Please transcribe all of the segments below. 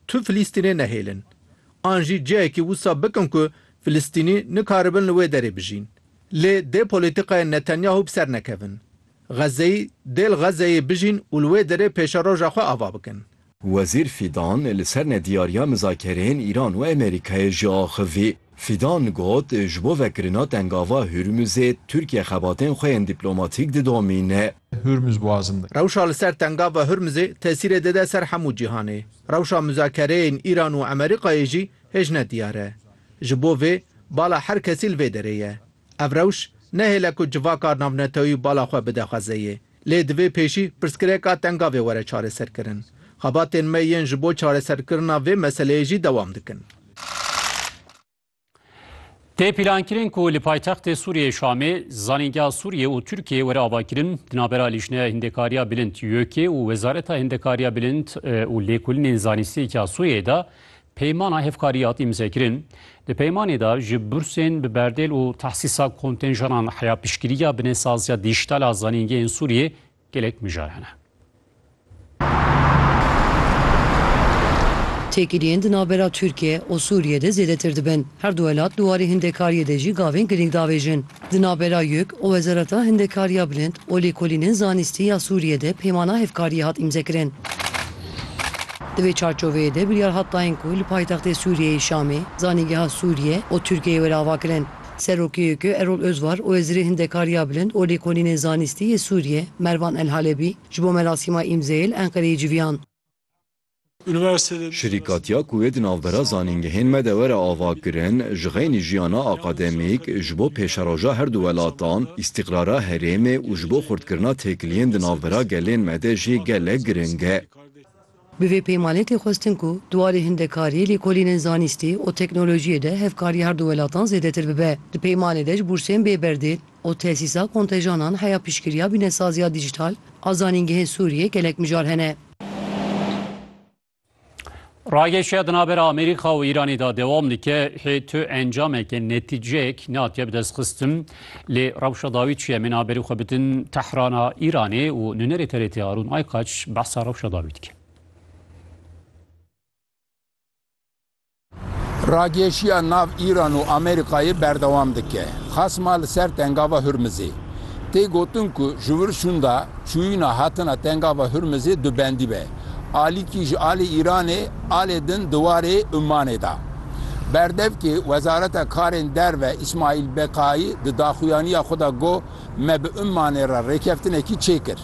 Tu Filistînê nehêlin. An jî cihekî wisa bikin ku Filistînî nikaribin li wê derê bijîn. Lê dê polîtîkayên Netanyahu bi ser nekevin. Xezzeyî dê li Xezzeyê bijîn û li wê derê pêşeroja xwe ava bikin. Wezîr Fîdan li ser nediyariya mizakereyên Îran û Amerîkayê jî axivî. Fîdan got, Ji bo vekirina tengava Hurmuzê Tirkiye xebatên xwe yên dîplomatîk didomîne. Hurmuz Boğazım de. Rewşa li ser Tengava Hurmuzê tesîrê dide ser hemû cîhanê. Rewşa muzakereyên Îran û Amerîkayê jî hê ji ne diyar e. Ji bo vê bala her kesî li vê derê ye. Ev rewş nehêle ku civaka navnetewî bala xwe bide xwezeyê. Lê divê pêşî pirsgirêka Tengavê were çareserkirin. Xebatên me yên ji bo çareserkirina vê meseleyê jî dewam dikin. Tê pîlankirin ku li paytextê Sûriyê Şamê zanîngeha Sûriyê û Tirkiyê were avakirin di navbera Lîjneya Hindekariya Bilind YÖK'ê û Wezareta Hindekariya Bilind û Lêkolinên Zanistiyê ya Sûriyeyê de peymana hevkariyê hat îmzekirin. Di peymanê de ji bursên bi berdêl û tehsîsa kontenjanan heya piştgiriya binesaziya dîjîtal a zanîngehên Sûriyê Gelek mijar hene. Têkiliyên di navbera Tirkiye û Sûriye de zêdetir dibin. Her du welat di warê hindekariyê de jî gavên girîng davêjin. Di navbera yek û Wezareta Hindekariya Bilind û Lêkolînên Zanîstî ya Sûriye de peymana hevkariyê hat îmzekirin. Di vê çarçoveyê de biryar hat dayîn ku li paytextê Sûriyeyê Şamê, zanîngeha Sûriye û Tirkiyeyê were avakirin. Serokê YK Erol Ozvar û Wezîrê Hindekariya Bilind û Lêkolînên Zanîstî yê Sûriyê Mervan El Halebî ji bo merasîma îmzeyê li Enqereyê civiyan. Şirîkatiya ku wê di navbera zanîngehên me de were avakirin, ji xeynî jiyana akademîk, ji bo pêşeroja her du welatan, îstîqrara herêmê û ji bo xurtkirina têkiliyên di navbera gelên me de jî gelek giring e. Bi vê peymanê tê xwestin ku di warê hindekariyê, lêkolînên zanîstî û teknolojiyê de hevkarî her du welatan zêdetir bibe. Di peymanê de ji bûrsên bê berdêl û tesîsa kontejanan heya piştgiriya bînesaziya dîjîtal a zanîngehên Sûriyê gelek mijar hene. Rageşiya di navbera Amerîka û Îranê de dewam dike, hê tu encameke netîceyek nehatiye bidestxistin. Lê rewşa dawî çi ye? Min a berî xwe bidin Tehrana Îranê û nûnerê TRT Arûn Aykaç behsa rewşa dawî dike. Ragêşiya nav Îran û Amerîkayê berdewam dike, xasma li ser Tengava Hurmizê. Tê gotin ku ji wir şûnda çûyîna hatina Tengava Hurmizê dubendî be. alîkî ji alê Îranê alê din di warê Ummanê da. Berdevkê Wezareta Karên Derve Îsmaîl Beqaî di daxuyaniya xwe de got, Me bi Ummanê re rêkeftinekî çêkir.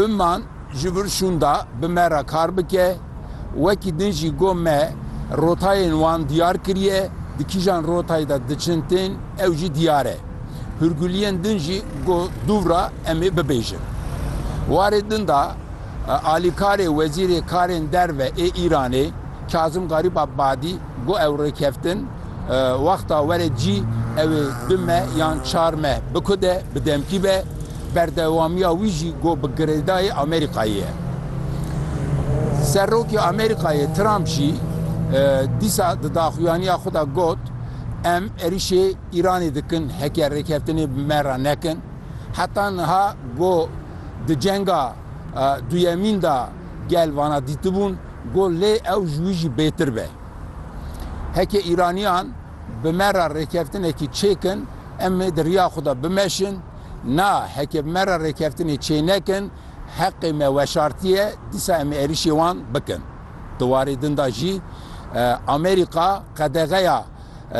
Umman ji vir şûnda bi me re kar bike. Wekî din jî got me rotayên wan diyar kiriye, di kîjan rotayê de diçin tên ew jî diyar e. hûrguliyên din jî ku dûvra em ê bibêjin. Warê din de alîkarê Wezîrê Karên Derve ê Îranê Kazim Garîb Abadî got ew rêkeftin wexta were cî ew ê du meh yan çar meh bikude, bi demkî be, berdewamiya wî jî got bi girêdayê Amerîkayê ye. Serokê Amerîkayê Trump jî dîsa di daxuyaniya xwe de got, Em êrişê Îranê dikin heke rêkeftinê bi me re nekin. Heta niha go di cenga duyemîn de gel vana dîtibûn go lê ew ji wî jî bêtir be. Heke Îranîyan bi me re rêkeftinekî çêkin em ê di riya xwe de bimeşin. Na heke bi me re rêkeftinê çênekin heqê me weşartiye dîsa em ê êrişê wan bikin. Di warê din de jî Amerîka qedexeya.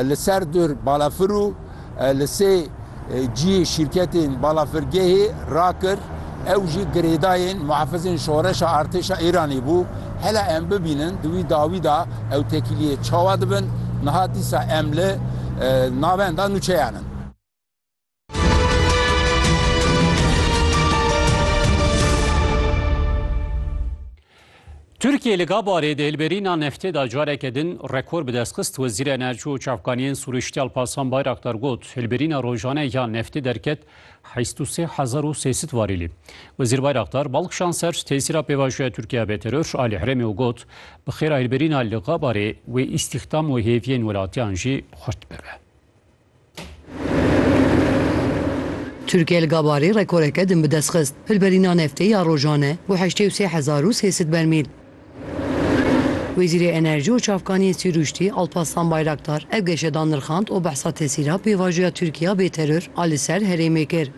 li ser dir balafir û li sê cihê şîrketên balafirgehê rakir, ew jî girêdayên muhafizên şoreşa artêşa Îranê bû. Hela em bibînin di wî dawî de ew tekîliyê çawa dibin, niha dîsa em li navenda nûçeyan in. Tirkiye li Gabarê di hilberîna neftê de careke din rekor bi dest xist. Wezîr Enerji û Çavkaniyên Sûriştî Alparslan Bayraktar got, hilberîna rojane ya neftê derket heşt û sê hezar û sê sed varîlî. Wezîr Bayraktar bal kişand ser tesîra pêvajoya Tirkiye ya bêteror alî herêmê û got, bi xêra hilberîna li Gabarê wê îstîxdam û hêviyên welatiyan jî xurt bibe. Tirkiye li Gabarê rekoreke din bi dest xist, hilberîna neftê ya rojan e bo heştê û sê hezar û sê sed bermîl. Wezîrê Enerjî û Çavkaniyên Sîrûştî Alpaslan Bayraktar ev geşe da nirxand û behsa tesîra pêvajoya Tirkiya bê teror a li ser herêmê kir.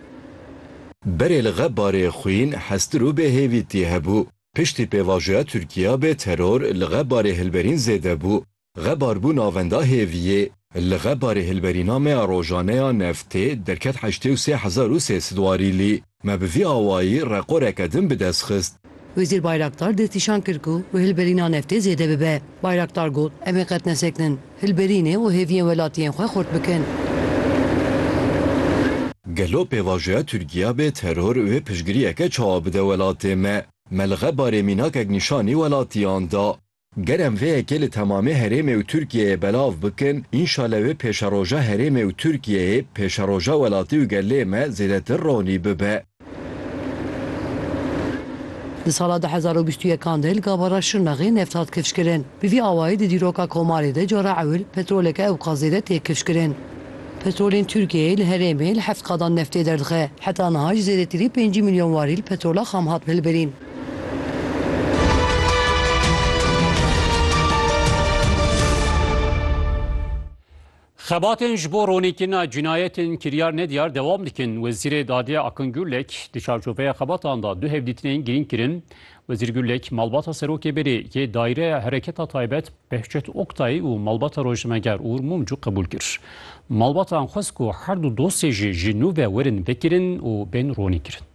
Berê li Gebarê xwîn, hestir û bêhêvîtî hebû. Piştî pêvajoya Tirkiya bê teror li Gebarê hilberîn zêde bû. Xebar bû navenda hêviyê, li xebarê hilberîna me ya rojane ya neftê derket heştê û sê hezar û sê sed warîlî. Me bi vî awayî rekoreke din bi dest xist. Wezîr Bayraktar destnîşan kir ku bi hilberîna neftê zêde bibe. Bayraktar got, Em ê qet nesekinin, hilberînê û hêviyên welatiyên xwe xurt bikin. Gelo pêvajoya Tirkiya bê teror wê piştgiriyeke çawa bide welatê me? Me li xebarê mînakek nîşanî welatiyan da. Ger em vê yekê li temamê herêmê û Tirkiyeyê belav bikin, înşale wê pêşeroja herêmê û Tirkiyeyê, pêşeroja welatî û gelê me zêdetir ronî bibe. Di sala du hezar û bîst û yekan de li gavara Şirnexê neft hat kifşkirin. Bi vî awayî di dîroka komarê de cara ewil petroleke ewqas zêde tê kifşkirin. Petrolên Tirkiyeyê li herêmê li heft qadan neftê derdixe. Heta niha ji zêdetirî pêncî milyon warîl petrola xam hat hilbirîn. Xebatên ji bo ronîkirina cinayetên kiryar nediyar dewam dikin. Wezîrê Dadê Akin Gurlek di çarçoveya xebatan da du hevdîtinên girîng kirin. Wezîr Gurlek malbata Serokê Berê yê Daîreya Hereketa Taybet Behçet Oktay û malbata rojnameger Uğur Mumcu qebûl kir. Malbatan xwest ku her du dosyê jî ji nû ve werin vekirin û bên ronîkirin.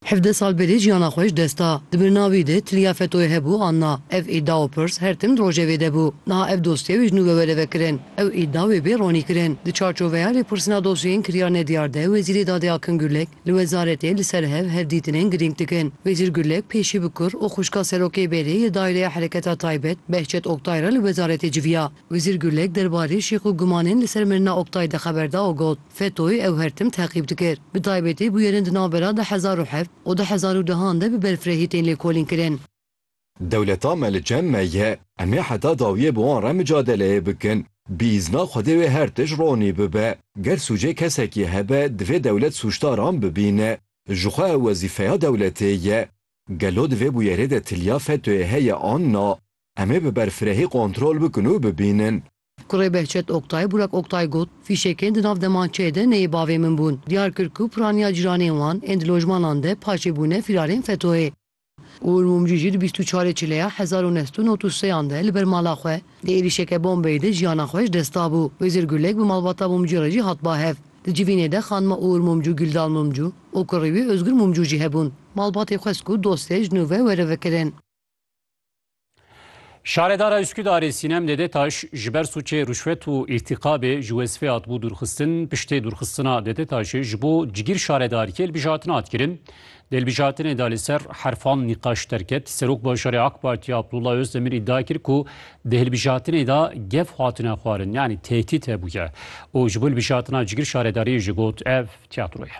Hevdeh sal berê jiyana xwe ji dest da. Di birina wî de tiliya FETO'yê hebû an na. Ev îda û pirs her tim di rojevê de bû. Niha ev dosye wê ji nû wewereve kirin. Ew îda wê bê ronî kirin. Di çarçoveya lêpirsîna dosyeyên kiryar nediyar de Wezîrê Dadê Akin Gurlek li wezaretê li ser hev hevdîtinên girîng dikin. Wezîr Gurlek pêşî bi kur û xwişka Serokê Bêrê yê Daîreya Hereketa Taybet Behçet Oktay re li wezaretê civiya. Wezîr Gurlek derbarê şîx û gumanên li ser mirina Oktay de xeber da û got, Fetoy ew her tim teqîb dikir. Bi taybetî bûyerên di navbera du hezar û heft û du hezar û deh an de bi berfirehî tên lêkolînkirin. Dewleta me li cem me ye. Em ê heta dawiyê bi wan re micadeleyê bikin. Bi îzna Xwedê wê her tişt ronî bibe. Ger sûcê kesekî hebe divê dewlet sûcdaran bibîne. Ji xwe ew wezîfeya dewletê ye. Gelo di vê bûyerê de tiliya Fetoyê heye an na? Em ê bi berfirehî kontrol bikin û bibînin. Kurê Behçet Oktay, Burak Oktay got, Fîşekên di nav demançeyê de neyê bavê min bûn. Diyar kir ku piraniya cîranên wan ên di lojmanan de paşê bûne fîrarên FETO'yê. Uğur Mumcu jî di bîst û çarê Çileya hezar û neh sed û newt û seyan de li ber mala xwe di êrîşeke bombeyê de jiyana xwe ji dest dabû. Wêzir Gulek bi malbata Mumcu re jî hat ba hev. Di civînê de xanima Uğur Mumcu, Güldal Mumcu û kurê wî Ozgur Mumcu jî hebûn. Malbatê xwest ku dosyayê ji nû ve were vekirin. Şaredara Üsküdarê Sinem Dedetaş ji ber sûçê rûşwet û îrtîqabê ji wezifê hatibû dûrxistin. Piştê dûrxistina Dedetaşê ji bo cigîr şaredariyê hilbijartin hat kirin. Di hilbijartinê de li ser herfan nîqaş derket. Serok Bajarê AK Partî Abdullah Özdemir îdia kir ku di hilbijartinê de gef hatine xwarin yanî tehdît hebûye û ji bo hilbijartina cigîr şaredariyê jî got ev tîyatroye.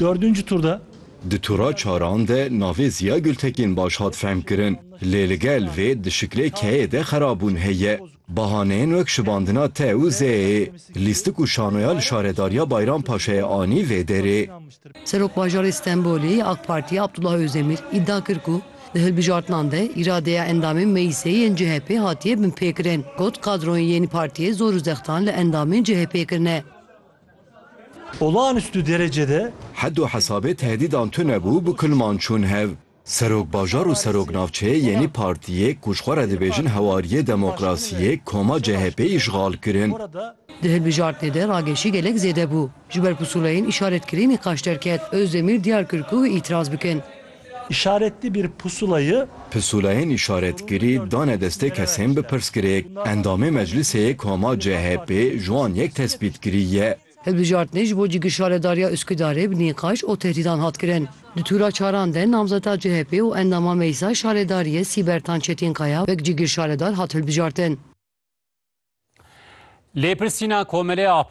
Dördüncü turda. Di tura çaran de navê Ziya Gültekin baş hat fehmkirin lê li gel vê di şiklê keyê de xerabûn heye. Bahaneyên wek şibandina te û zêyê, lîstik û şanoya li Şaredariya Bayram Paşayê anî vê derê. Serokbajarê Stenbolê yê AK Partiyê Abdullah Özdemir îdia kir ku, Di hilbijartinan de îradeya endamên meclîsê yên CHP'ê hatiye binpêkirin, got, Kadroyên yên partiyê zor û zextan li endamên CHP'ê kirine. Olağanüstü derecede. Hed û hesabê tehdîdan tune bû, bi kulman çûn hev. Serokbajar û Seroknavçeyê yenî partiyê ku ji xwe re dibêjin Hewariyê Demokrasiyê, koma CHP'ê îşxal kirin. Di hilbijartinê de rageşî gelek zêde bû. Ji ber pusûleyên îşaretkirî nîqaş derket, Ozdemîr diyar kir ku wê îtîraz bikin. Îşaretli bir pusulayı. Pusulayên îşaretkirî dane destê kesên bi pirsgirêk. Endamê meclisê yê koma CHP'ê ji wan yek tespîtkirî ye. Hilbijartinê ji bo cigir Şaredariya Üsküdarê bi nîqaş û tehdîdan hat kirin. Di tûra çaran de namzeta CHP'ê û endama Meclisa Şaredariyê Sîbertan Çetînkaya wek cigir şaredar hat hilbijartin. Lêpirsîna Komelê Ahbabê.